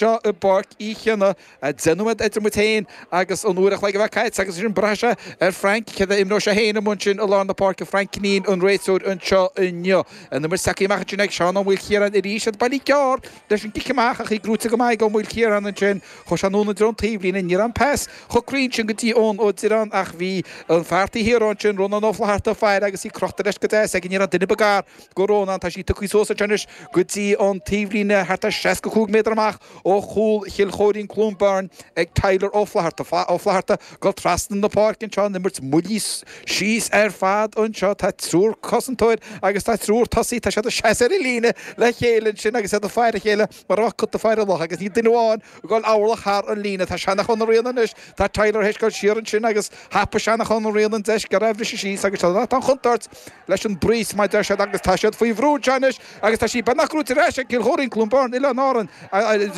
Seo i bPáirc Uí Chionnaith deich nóiméad idir muid féin agus an uair a chloig a bheith caite agus ansin braithfidh sé ar Frank céard a imreoidh sé féin amuigh ansin i lár na páirce, Frank Kinneen an réiteoir anseo inniu. An imirt sa gcic amach ansin ag Seán Ó Maoilchiaráin arís agus buille gearr leis an gcic amach ach í gnóite go maith ag Ó Maoilchiaráin ansin. Chuir sé anonn i dtreo an taobhlíne, ní raibh an pas chomh cruinn sin go dtí Eoin Ó Direáin ach bhí an fear taobh thiar ansin, Rónán Ó Flatharta, ag faire agus í crochta leis go deas aige, ní raibh aon duine ba gar. do Rónán, tá sí tugtha suas anseo anois go dtí an taobhlíne thart ar 65 méadar amach ó chúl Chill Chóirín, Cluain Bheirn, ag Tyler Ó Flatharta. Ó Flatharta ag dul trasna na páirce anseo an imirt moillithe síos ar fad anseo, tá triúr cosantóir agus tá triúr tosaí, tá siad ag seasamh ar an líne le chéile ansin agus iad ag faire a chéile mar a bheadh cat ag faire luch agus níl duine amháin ag dul aon orlach thar an líne. Tá Seanachán Ó Riain anois, tá Tyler théis dul siar ansin agus thapaigh Seanachán Ó Riain an deis gearr a bhriseadh síos agus tá an chontúirt leis an bpress, mar a deir siad, agus tá siad faoi bhrú anseo anois agus tá sí beagnach gnóite ar ais ag Cill Chóirín, Cluain Bheirn, Oileáin Árann.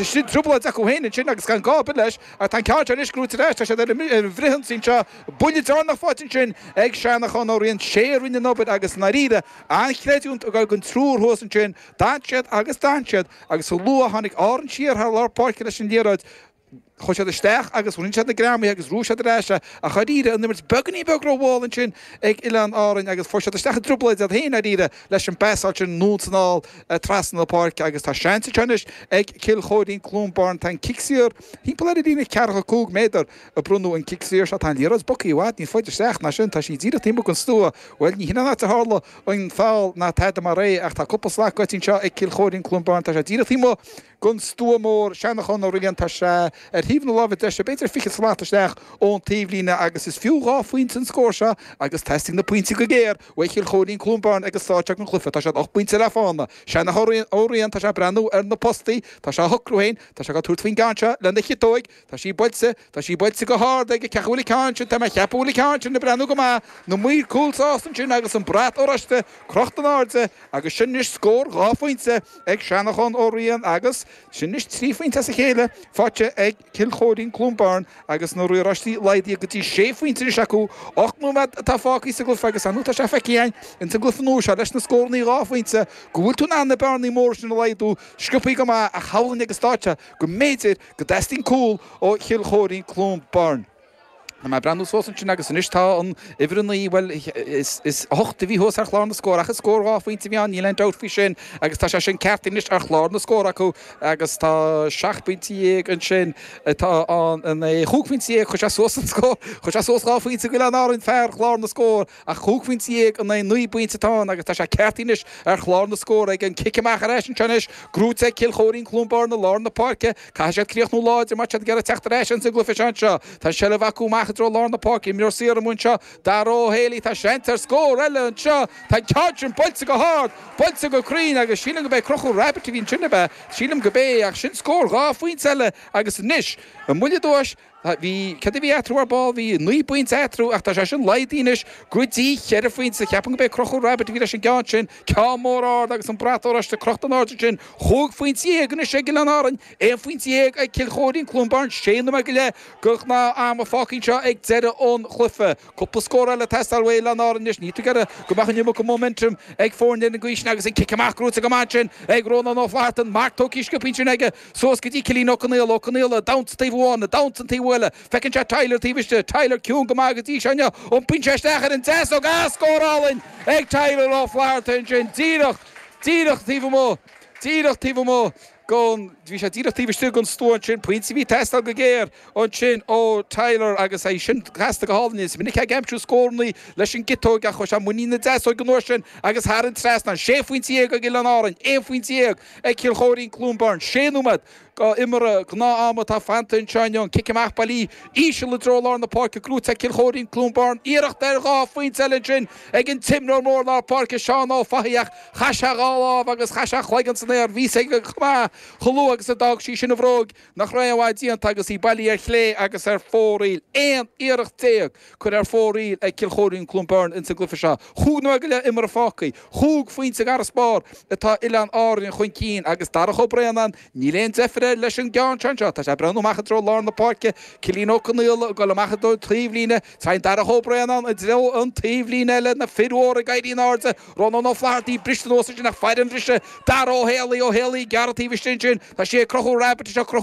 Sin trioblóid acu féin ansin agus gan gá ar bith leis, ach tá an ceann seo anois gnóite ar ais, tá siad ar an bhfrithionsaí anseo, buille deireanach faighte ansin ag Seanachán Ó Riain, 'sé a rinne an obair agus, i ndáiríre, an-chreidiúint ag dul don triúr thuas ansin, d'fhan siad agus d'fhan siad agus chomh luath a tháinig Árainn siar thar lár páirce leis an liathróid, Chuaigh siad isteach agus rinne siad na greamaithe agus ghnóthaigh siad ar ais é, ach dháiríre, an imirt beagáinín beag rómhall ansin ag Oileáin Árann agus fuair siad isteach i dtrioblóid iad féin, dháiríre, leis an bpasáil sin anonn is anall trasna na páirce agus tá seans anseo anois ag Cill Chóirín-Cluain Bheirn. Tá an cic saor thimpeall ar an líne ceathracha cúig méadar a bronnadh an cic saor seo. Tá an liathróid bogtha i bhfad níos faide isteach ná sin. Tá sí díreach taobh amuigh den stua. Bhuel, ní shin an áit a tharla an foul ná tada mar é ach tá cúpla slat faighte anseo ag Cill Chóirín-Cluain Bheirn. Tá sé díreach taobh amuigh den stua mór, Seanachán Ó Riain, tá sé ar thaobh na láimhe deise, b'fhéidir fiche slat isteach ón taobhlíne, agus is fiú dhá phointe an scór seo agus teastaíonn na pointí go géar uaidh Chill Chóirín, Cluain Bheirn ag an staid seo den chluife. Tá sé ocht bpointe le fána. Seanachán Ó Riain, tá sé ag breathnú ar na postaí, tá sé á shocrú féin, tá sé ag tabhairt faoin gceann seo lena chiotóig, Tá sí buailte, tá sí buailte go hard aige ach an bhfuil an ceann sin, tá mé a' ceapadh go bhfuil an ceann sin ag breathnú go maith, na maoir cúil sásta ansin agus an brat oráiste crochta in airde agus sin anois scór dhá phointe ag Seanachán Ó Riain agus sin anois trí phointe as a chéile faighte ag Cill Chóirín-Cloonbairn agus na riaráistí laghdaithe go dtí sé phointe anois acu. Ocht nóiméad atá fágtha sa gcluiche agus anois tá sé feicthe againn ins an gcluiche nua seo leis na scórannaí dhá phointe go bhfuil tú in ann na bearnaí móra sin a laghdú, sciobtha go maith ach shamhlóinn agus d'áiteoinn go mb'fhéidir go dteastaíonn cúl ó Chill Chóirín, Cluain Bheirn. Tá mé ag breathnú suas ansin agus anois tá an uimhir a naoi, bhuel, is a hocht a bhí thuas ar chlár na scór ach is scór dhá phointe a bhí ann, níl aon dabht faoi sin, agus tá sé sin ceart anois ar chlár na scór acu agus tá seacht bpointe dhéag ansin atá ann, a naoi, chúig phointe dhéag, chuir sé suas an scór, chuir sé suas dhá phointe d'Oileáin Árann fear chlár na scór. Ach chúig phointe dhéag in aghaidh naoi bpointe atá ann agus tá sé ceartaithe anois ar chlár na scór agus an cic amach ar ais anseo anois. Gnóite ag Cill Chóirín-Cluain Bheirn i lár na páirce. Caithfidh siad críochnú láidir má tá siad ag iarraidh teacht ar ais ins an gcluiche seo anseo. Tá an tseilbh acu amach i dtreo lár na páirce. Imreoir saor amuigh anseo, Dara Ó hÉalaí. Tá seans ar scór eile anseo. Tá an ceann sin buailte go hard, buailte go cruinn agus sílim go b'é Conchúr Rabbitte a bhí ansin, ab ea? Sílim go b'é, ach sin scór dhá phointe eile agus anois an bhfuil i dtomhais? Bhí, céard a bhí eatarthu ar ball? Bhí naoi bpointe eatarthu ach tá sé sin laghdaithe anois go dtí cheithre phointe. Ceapaim go b'é Conchúr Rabbitte a bhí leis an gceann sin, ceann mór ard agus an brat oráiste crochta in airde ansin. Chúig phointe dhéag anois ag Oileáin Árainn, aon phointe dhéag ag Cill Chóirín, Cluain Bheirn, sé nóiméad go leith de ghnáth-am fágtha anseo ag deireadh an chluiche. Cúpla scór eile ag teastáil uaidh Oileáin Árainn anois. Níl tú ag iarraidh go mbeadh an iomarca momentum ag foirne ar an gcaoi sin agus an cic amach gnóite go maith ansin ag Rónán Ó Flatharta, an marc tógtha, scioptha ansin aige. Suas go dtí Cillín Ó Conaola, Ó Conaola, damhsa taobh amháin, damhsa an taobh eile. Feiceann sé Tyler taobh istigh, Tyler ciúin go maith go dtí seo inniu. Iompaíonn sé isteach ar an deasóg, ah, scór álainn ag Tyler Ó Flatharta ansin, díreach, díreach taobh amuigh, díreach taobh amuigh gon, bhí sé díreach taobh istigh gon stua ansin, pointe a bhí ag teastáil go géar ansin ó Tyler agus é sin casta go hálainn. Is minic ag aimsiú scóranna leis an gciotóg ach chuaigh sé i muinín na deasóige an uair sin agus thar an trasnán, 16 phointe ag Oileáin Árainn, 11 phointe. ag Cill Chóirín, Cluain Bheirn, 6 nóiméad go imirt gnáth ama atá fanta anseo inniu, an cic amach bailí íseal i dtreo lár na páirce gnóite ag Cill Chóirín, Cluain Bheirn, iarracht ar dhá phointe eile ansin ag an t-imreoir mór lár páirce Seán Ó Fathaigh ach chaith sé dhá lámh agus chaith sé a chloigeann san aer bhí a fhios aige go maith chomh luath agus a d'fhág sí sin a bhróig nach raibh an bheart déanta agus í bailí ar chlé agus ar fóraoil 11 iarracht curtha ar fóraoil ag Cill Chóirín Cluain Bheirn ins an gcluife seo chúig nóiméad go leith imeartha fágtha. Chúig phointe g'fharasbarr atá Oileáin Árainn chun cinn agus Darach Ó Braonáin, níl aon deifir air leis an gceann sin anseo, tá sé ag breathnú amach i dtreo lár na páirce, Cillín Ó Conaola ag goil amach i dtreo taobhlíne, téann Darach Ó Braonáin i dtreo an taobhlíne eile, na fir mhóra ag éirí in airde, Rónán Ó Flathartaigh briste anuas ansin ag faire an bhriseadh Dara Ó hÉalaí, Ó hÉalaí ag gearradh taobh istigh ansin, tá sé ag Conchúr Rabbitte, ag Conchúr.